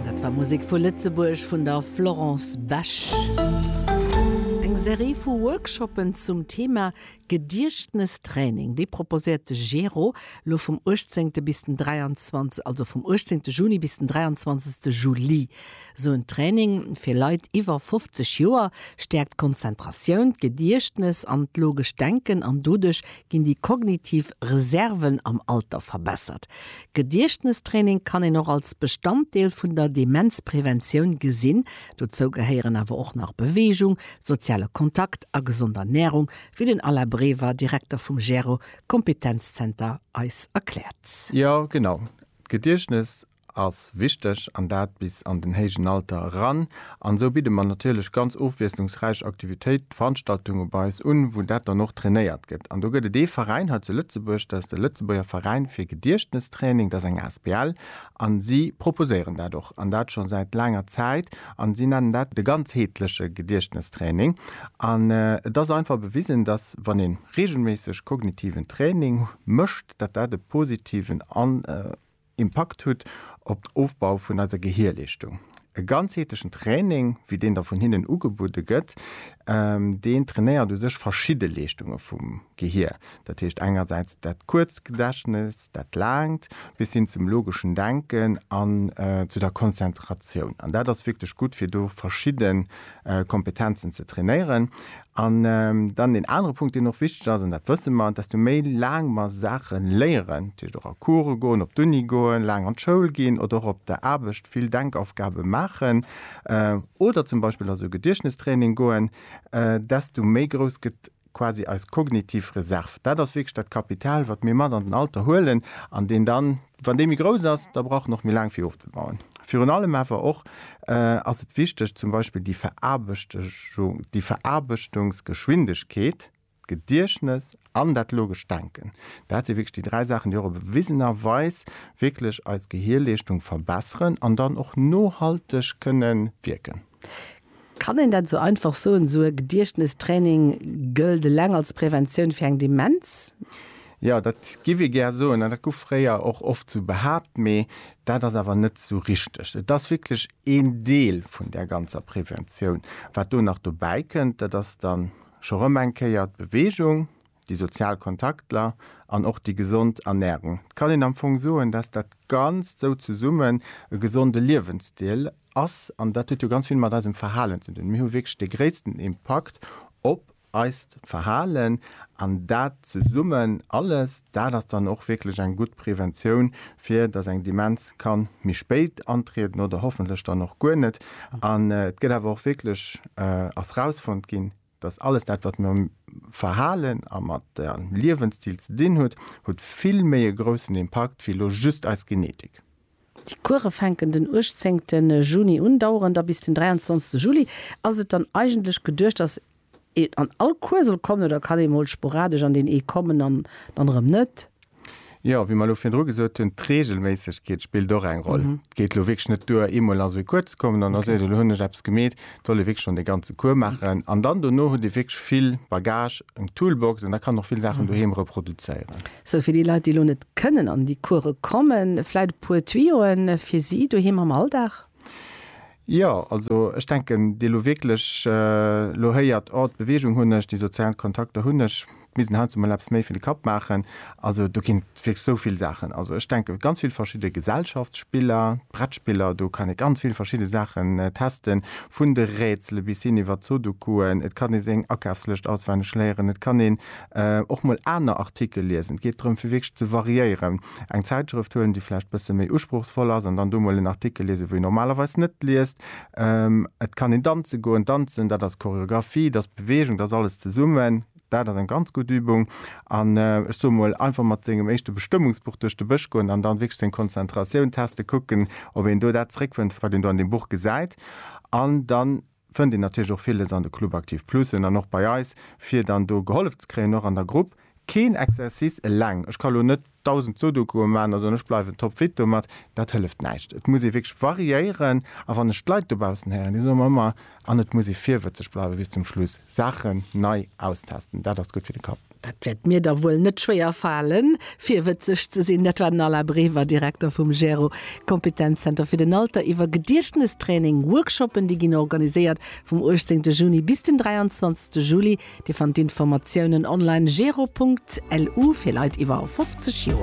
Dat war Musek vu Lëtzebuerg vun der Florence Besch. Eng Serie vu Workshoppen zum Thema Gediechtnestraining, déi proposéiert de GERO lo vum 18 bis den 23, also vum 18 Juni bis den 23 Juli. Esou en Training fir Leit iwwer 50 Joer stäerkt d'Konzentratioun, d'Gediechtnes an d'logescht Denken an doduerch Ginn déi kognitiv Reserven am Alter verbessert? Gediechtnestraining kann een och als Bestanddeel vun der Demenzpreventioun gesinn. Dozou gehéieren awer och nach Beweegung, soziale Kontakt a gesond Ernärung, wéi den Alain Brever, Direkter vum GERO-Kompetenzzenter eis erkläert. Jo genau, d'Gediechtnes ass wichteg, an dat bis an den héijen Alter eran. An esou bidde mer natierlech ganz ofwiesslungsräich Aktivitéit, Veranstaltunge bei eis un, wou dat dann och trainéiert gëtt. An do gëtt et ee Veräin hei zu Lëtzebuerg, dat ass de Lëtzebuerger Veräin fir Gediechtnestraining, dat ass eng asbl, a si proposéieren dat och, an dat scho säit laanger Zäit, a si nennen dat de ganzheetleche Gediechtnestraining. An et ass einfach bewisen, dass, wann ee reegelméisseg kognitiven Training mécht, dat dat e positiven Impakt hutt op den Ofbau vun eiser Gehierleeschtung. E ganzheetlechen Training, wéi deen da vun hinnen ugebudde gëtt, deen trainéiert u sech verschidde Leeschtunge vum Gehier. Dat heescht engersäits dat kuerzt Gedächtnes, dat laangt, bis hin zum logeschen Denken an zu der Konzentratioun. An dat ass wierklech gutt, fir do verschidde Kompetenzen ze trainéieren. An dann deen anere Punkt, deen och wichteg ass, an dat wësse mer, desto méi laang mer Saache léieren, dat heescht och a Course goen, op d'Uni goen, laang an d'Schoul ginn oder och op der Aarbecht vill Denkaufgabe maachen oder zum Beispill a sou Gediechtnestraining goen, desto méi grouss gëtt quasi eis kognitiv Reserv, dat ass wierklech dat Kapital, wat mir mat an den Alter huelen an deen dann, wann dee méi grouss ass, da brauch en och méi laang, fir ofzebauen. Virun allem awer och ass et wichteg, zum Beispill déi Veraarbechtechung, déi Veraarbechtungsgeschwindegkeet, d'Gediechtnes an dat logescht Denken, dat si wierklech déi dräi Saachen, déi och bewisenerweis wierklech eis Gehierleeschtung verbesseren an dann och nohalteg kënnen wierken. Kann een dat esou einfach soen, esou e Gediechtnestraining gëllt eleng als Preventioun fir eng Demenz? Jo, dat giff ee gär soen an dat gouf fréier och oft esou behaapt, mee dat ass awer net esou richteg. Et ass wierklech een Deel vun där ganzer Preventioun. Wat do nach dobäi kënnt, dat ass dann scho rëm eng Kéier d'Beweegung. déi sozial Kontaktler an och déi gesond Ernährung, et kann een am Fong soen, dass dat Ganzt sou zesummen e gesonde Liewensstil ass. An dat huet jo ganz vill mat eisem Verhalen ze dinn. Mir hu wierklech de gréissten Impakt op eist Verhalen an dat zesummen alles, dat ass dann och wierklech eng gutt Preventioun, fir dass eng Demenz kann méi spéit antrieden oder hoffentlech dann och guer net. An et gëtt awer och wierklech, ass rausfonnt ginn, Dass alles dat, wat mam Verhalen a mat der Liewensstil ze dinn huet, huet vill méi e groussen Impakt wéi elo just eis Genetik. Déi Course fänken den 18 Juni un, daueren da bis den 23 Juli. Ass et dann eigentlech geduecht, dass een an all Cours soll kommen oder kann ee mol sporadesch an deen ee kommen an dann erëm net? Jo, wéi mer elo virdru gesot hunn, d'Reegelméissegkeet spillt och eng Roll. Et geet elo wierklech net duer, eemol an sou ee Cours ze kommen an da seet een, elo hunn ech eppes gemeet. Et soll ee wierklech schonn dee ganze Cours maachen an dann dono huet ee wierklech vill Bagage, eng Toolbox an da kann och vill Saachen doheem reproduzéieren. Sou, fir déi Leit, déi elo net kënnen an déi Course kommen, vläit e puer Tuyoen fir si doheem am Alldag? Jo, also ech denken, déi elo wierklech elo héiert, oh d'Beweegung hunn ech, déi sozial Kontakter hunn ech, d'Musen haut emol eppes méi fir de Kapp maachen. Also do ginn et wierklech esou vill Saachen. Also ech denke ganz vill verschidde Gesellschaftsspiller, d'Brettspiller, do kann ee ganz vill verschidde Saachen testen, vun de Rätsele bis hin iwwert Sodokuen. Et kann ee seng Akafslëscht auswenneg léieren, et kann een och mol aner Artikel liesen. Et geet drëm fir wierklech ze variéieren. eng Zäitschrëft huelen, déi vläicht e bësse méi usprochsvoll ass, an dann do mol en Artikel liesen, wou een normalerweis net liest. Et kann een danze goen. Danzen, dat ass Choreographie, dat ass Beweegung, dat ass alles zesummen. Dat ass eng ganz gutt Übung. An ech soe mol, einfach mat sengem éischte Bestëmmungsbuch duerch de Bësch goen an dann wierklech seng Konzentratioun testen, kucken, ob een do dat zeréckfënnt, wat een do an deem Buch gesäit. An dann fënnt een natierlech och villes an de Club Aktiv Plusen an och bei eis, fir dann do gehollef ze kréien, och an der Grupp. Keen Exercice eleng, ech ka lo net 1000 Sudokuen maan a soen, ech bleiwen topfit domat, dat hëlleft näischt. Et muss ee wierklech variéieren a wann ech d'Leit dobaussen héieren, déi soe mer ëmmer, an et muss ee virwëtzeg bleiwen bis zum Schluss, Saachen nei austesten, dat ass gutt fir de Kapp. Dat wäert mir da wuel net schwéier falen, virwëtzeg ze sinn. Dat war den Alain Brever, Direkter vum GERO, Kompetenzzenter fir den Alter, iwwer Gediechtnestraining, Workshoppen, déi ginn organiséiert vum 18 Juni bis den 23 Juli. Dir fannt d'Informatiounen online, gero.lu, fir Leit iwwer 50 Joer.